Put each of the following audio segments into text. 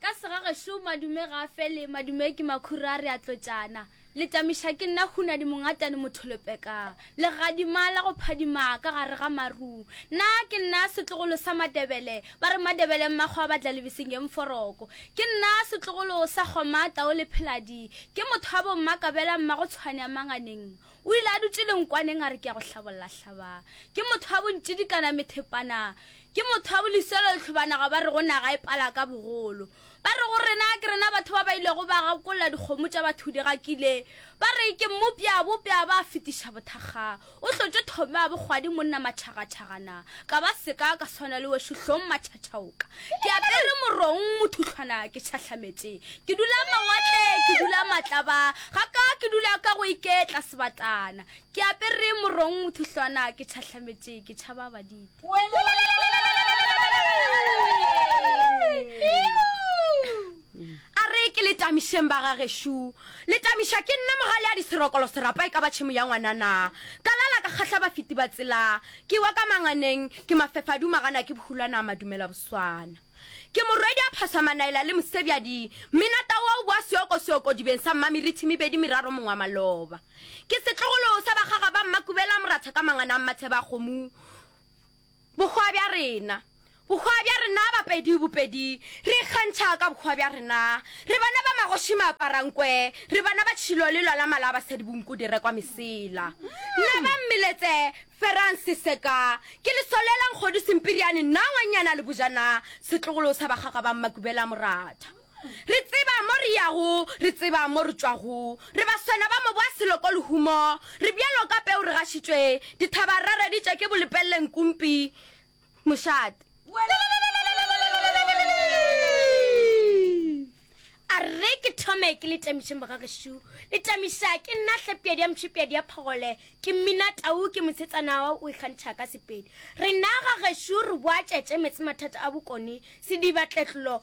Ka segagešo madume ga a fele, madume ke makhura re a tlotšana. Letamiša ke nna hunadi mongatane motholopeka, legadima la go phadima ka gare ga maru. Nna ke nna setlogolo sa Matebele, ba re Matebele mmakgwa ba tla lebeseng eng foroko. Ke nna setlogolo sa Kgoma tau le Pheladi, ke motho wa bo Mmakabela mmagotshwane a Manganeng. O ile a dutše lenkwaneng a re ke ya go hlabolla hlaba. Ke motho wa bontšidikana methepana. Ke motho wa boliselo lehlobanaga ba re go naga e pala ka bogolo. Ba re go rena ke rena batho ba ba ilego ba gakolla dikgomo tša batho di gakile. Ba re ke mmopša bopša ba fetiša bothakga. O hlotše thome wa bokgwadi monna matšhagatšhagana. ka ba seka ka swana le wešo hlong matšhatšhaoka ke apere morong mothuhlwana ke tšhahlametše ke dula mawatle ke dula matlaba ga ka ke dula ka go iketla sebatlana ke apere morong mothuhlwana ke tšhahlametše ke tšhaba baditi A re, Ke le tamišeng, bagagešo. Le tamiša ke nna Mogaleadi Serokolo Serapa e ka ba tšhemo ya ngwana na? Ka lala ka kgahla bafeti ba tsela, ke wa ka manganeng, ke mafefa a duma gana ke bohulwana a madumela boswana. Ke morwedi a phosa manaela le mosebjadi, mmina tau a o boa seoko seokodibeng sa mmameritšhi mebedi meraro mong wa maloba. Ke setlogolo sa bakgaga ba mmakubela moratha ka mangana a mmatheba kgomo, Bohwa bja rena. Bohwa bja rena Bapedi Bopedi re ikgantšha ka bohwa bja rena Re bana ba magoši maaparankwe Re bana ba tšhilo le lwala mala Basadi bonku di rekwa mesela Nna ba mmeletse Ferang seseka Ke lesole la nkgodu sempiriane Nna ngwanyana le bojana Setlogolo sa bakgakga ba mmakubela moratha Re tseba mo re yago, re tseba mo re tšwago, re baswana ba mobo wa seloko lehumo, re bjalo ka peu re gašitšwe, dithaba re reditše ke bolepelleng kumpi, mošate. A re ke thome ke le tamišeng bagagešu, le tamiša ke nna hlapjadi ya mšupjadi ya phagole, ke mmina tau ke mosetsana wa o ikgantšha ka sepedi. Rena gagešu re boa tšetše metsemathata a bokoni, sediba tletlolo,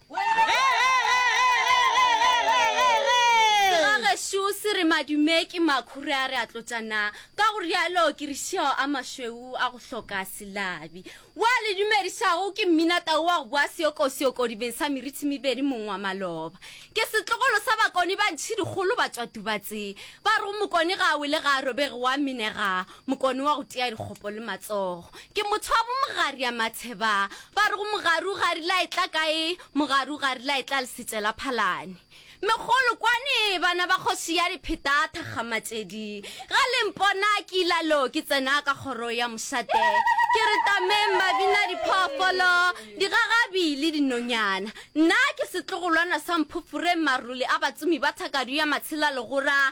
Gešo se re madume ke makhure a re a tlotša na ka go rialo ke re šeo a mašweu a go hloka selabi wa le dumedišago ke mmina tau wa go boa seokosioko dibeng sa merithi mebedi mong wa maloba ke setlogolo sa bakoni ba ntšhidikgolo ba tswa tubatseng ba re go mokoni ga a wele ga a robege wa minega Mokone wa go tea dikgopo le matsogo. Ke motho wa bo Mogari ya Matsheba. Ba re go Mogari o garile a etla kae? Mogari o garile a etla Lesetse la Phalane. Megolo kwane, bana ba kgoši ya dipheta thakgamatšedi. Ga le mpona ke ila lo ke tsena ka kgoro ya mošate. Ke re tameng mabina diphoofolo, digagabi le dinonyana. Nna ke setlogolwana sa mphofureng marole a batsomi ba thakadu ya Matshela Legora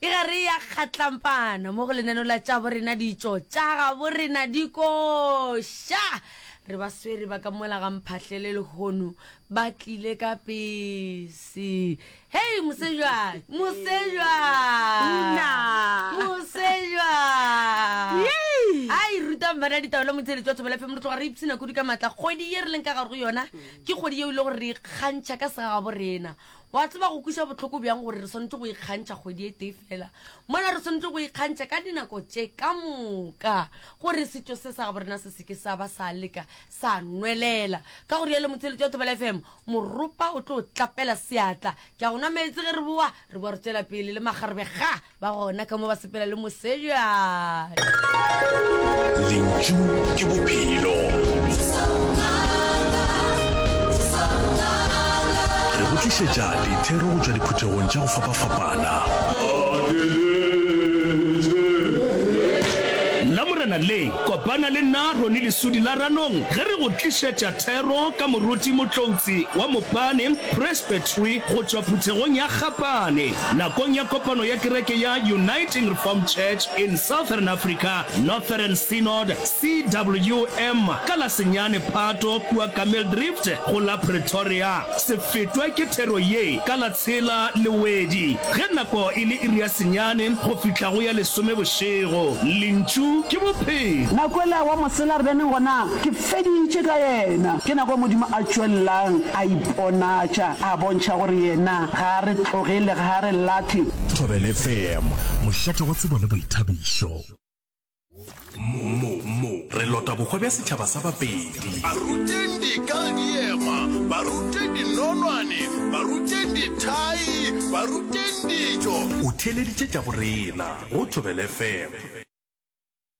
Ke gare ya kgatlampana mo go lenaneo la tša borena ditšo tša gabo rena dikoša. Re ba swere ba ka mola ga mphahlele lehono ba tlile ka pese. Hei mosejwa, mosejwa. Una. Mosejwa. Yay. Ai ruta mbana ditaba la motseletsi wa thobela fm re tloga re ipsina kudu ka matla kgwedi ye re leng ka gare go yona ke kgwedi yeo e le gore re ikgantšha ka segagabo rena O a tseba go kweša bohloko bjang gore re swanetše go ikgantšha kgwedi e tee feela mola re swanetše go ikgantšha ka dinako tše ka moka gore setšo se sa gabo rena se seke sa ba sa leka sa nwelela. Ka go rialo motheeletši wa Thobela FM, Moropa o tlo tlapela seatla. Ke a go nwa meetse ge re bowa, re bowa re tšwela pele le makgarebe ga! ba gona ka mo ba sepela le moseja lentšu ke bophelo re go tlišetša dithero go tšwa diphuthegong tša go fapafapana lamorena le kopana le nna rone lesudi la ranong ge re go tlišetša thero ka moruti motloutsi wa mopane presbytery go tšwa phuthegong ya kgapane nakong ya kopano ya kereke ya Uniting Reformed Church in Southern Africa, Northern Synod, CWM, ka la senyane Phato kua Kameeldrift go la Pretoria. Se fetwe ke thero ye ka la tshela Lewedi ge nako e le iri ya senyane go fihla go ya lesome bošego. Lentšu ke Bophelo. Na kwele wa mosela re bene gona? Ke feditše ka yena. Ke nako Modimo a tšwelelang a iponatša, a bontšha gore Yena ga a re tlogele, ga a re lahle. Thobela FM, mošate wa tsebo le boithabišo. Mo, mo, re lota bohwa bja setšhaba sa Bapedi. Baruteng dikadiema, baruteng dinonwane, baruteng dithai, baruteng dijo. O theeleditše tša go rena go Thobela FM.